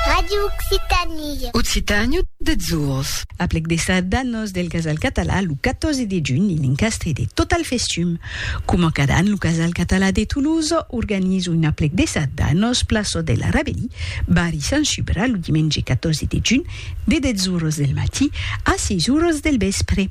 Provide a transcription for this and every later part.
Ràdio Occitània. Occitània des ors. Aplec de Çadanos del Casal Català lo 14 de junh en encastre de Total Festum. Coma cada an lo Casal Català de Toulouse organiza un aplec de Çadanos plaça de la Rabelí, barri Sant Subra lo dimenge 14 de junh de 10 oras del matí a 6 oras del vèspre.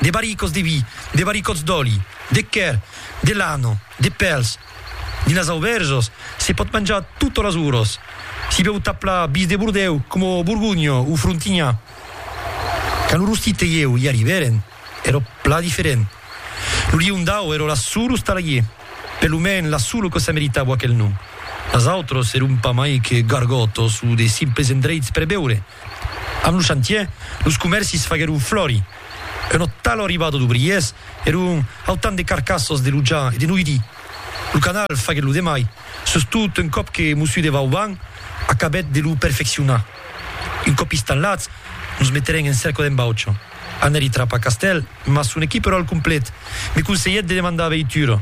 de barricòts de vi, de barricòts d'òli, de quèr, de lana, de pèls. Dins las aubèrjas se pòt manjar totas las oras. S'i bèu tap la bis de Bordèu coma Borgonha o Frontinha. Quand lo Rostit e ieu i arribèrem, èra plan diferent. Lo Liondau èra la sola ostalaie, per lo mens la sola que se meritava aquel nom. Las autras èron pas mai que gargòtas o de simples endreits per beure. Amb lo chantier, los comèrcis faguèron flori. Un ò tal arribada d'obriers, èron autant de carcassas de luja e de noidi. Lo canal faguèt lo demai, sustot un còp que Mossú de Vauban acabèt de lo perfeccionar. Un còp istanlats, nos meterèn en cerca d'en Baucha. Anèri trapar castèl, mas son equip èrò al complet. Me conselhèt de demandar veitura.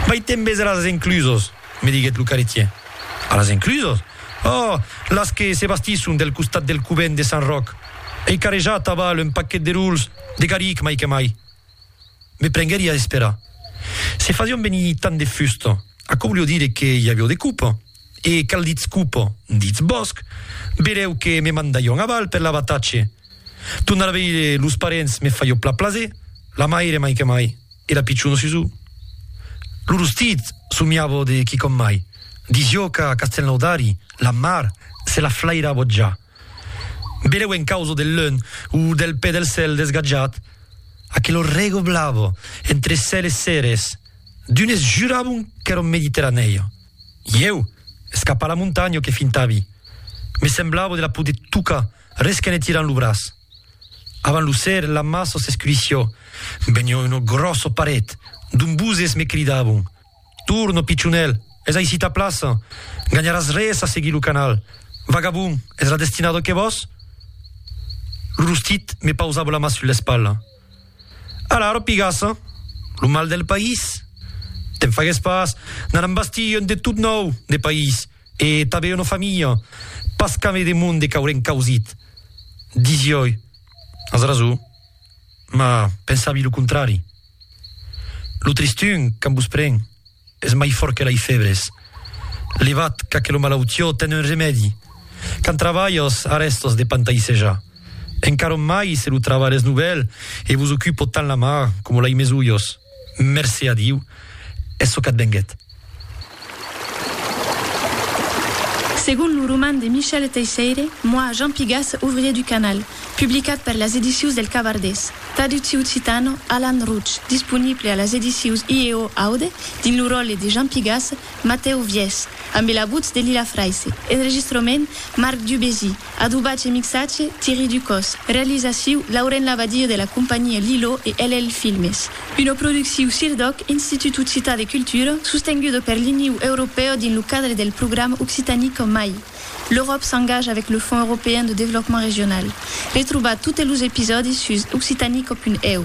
Mai tembes eras enclusas! me diguèt lo carretier. A las enclusos? Oh! las que se bastisson del costat del covent de Sant Ròc. Ei carrejat a val un paquet de rols de garric mai que mai. Me prenguèri a esperar. Se fasián venir tant de fusta, aquò volió dire que i avió de copa. E qual ditz copa? Ditz bòsc. Verèu que me mandarián a val per l'abatatge. Tornar a veire los parents me fa jo pla plaser, la maire mai que mai, e la pichona Susù. Lo rostit somiava de quicòm mai, dis jo qu'a Castelnaudari la mar se la flairava ja. Beleu en causa del leun o del pè del cèl desgatjat, aquela rega blava entre cèl e cères, d'unes juràvon qu'èra mediterranèia. Ieu, escapar la montanha que fintavi, me semblava de la poder tocar, Res que ne tiran lo braç. Avant lo ser, la mar sos escurissió. Venió uno grosso paret d'ombuzes me cridavon, Torno, pichonèl, es aicí ta plaça, ganharàs res a seguir lo canal. Vagabon, es la destinada que vòs? Lo rostit me pausava la mà sus l'espatla. Alara, pigaça, lo mal del país? Te'n fagues pas, n'anam bastir un de tot nòu, de país. E tanben una familha, pas qu'ame de monde qu'aurem causit, disioi, as rason, mas pensavi lo contrari. Lo tristun, quand vos pren, es mai fòrt que lei febres. Levat qu'aquelo malautió ten un remèdi, quand travalhas arrèstas de pantaisejar, encaron mai se lo travalh es novèl e vos ocupo tant la mar coma lei mes ulhos. Mercé a Diu, es çò qu'a't venguèt. Segon lo roman de Michel Teisseire, Moi, Jean Pigas, ouvrier du canal, publicat per las edicius del Cavardés, traductiu occitano, Alan Rouch, disponible a las edicius IEO Aude, dins lo ròle de Jean Pigas, Matèu Viès, ambe la votz de Lila Fraisse, enregistrament, Marc Dubésy, Adobatge e mixatge, Thierry Ducos. Realizaciu, Lauren Labadie de la companhia Lilo e LL Filmes. Una producciu CIRDOC, Institut Occitan de Cultura, sostenguda per l'Iniu Europèu dins lo cadre del programa Occitanie qu'en mai. L'Euròp s'engaja avec le Fonds Européen de Développement Régional. Retrobar totes los episòdis sus occitanico.eu.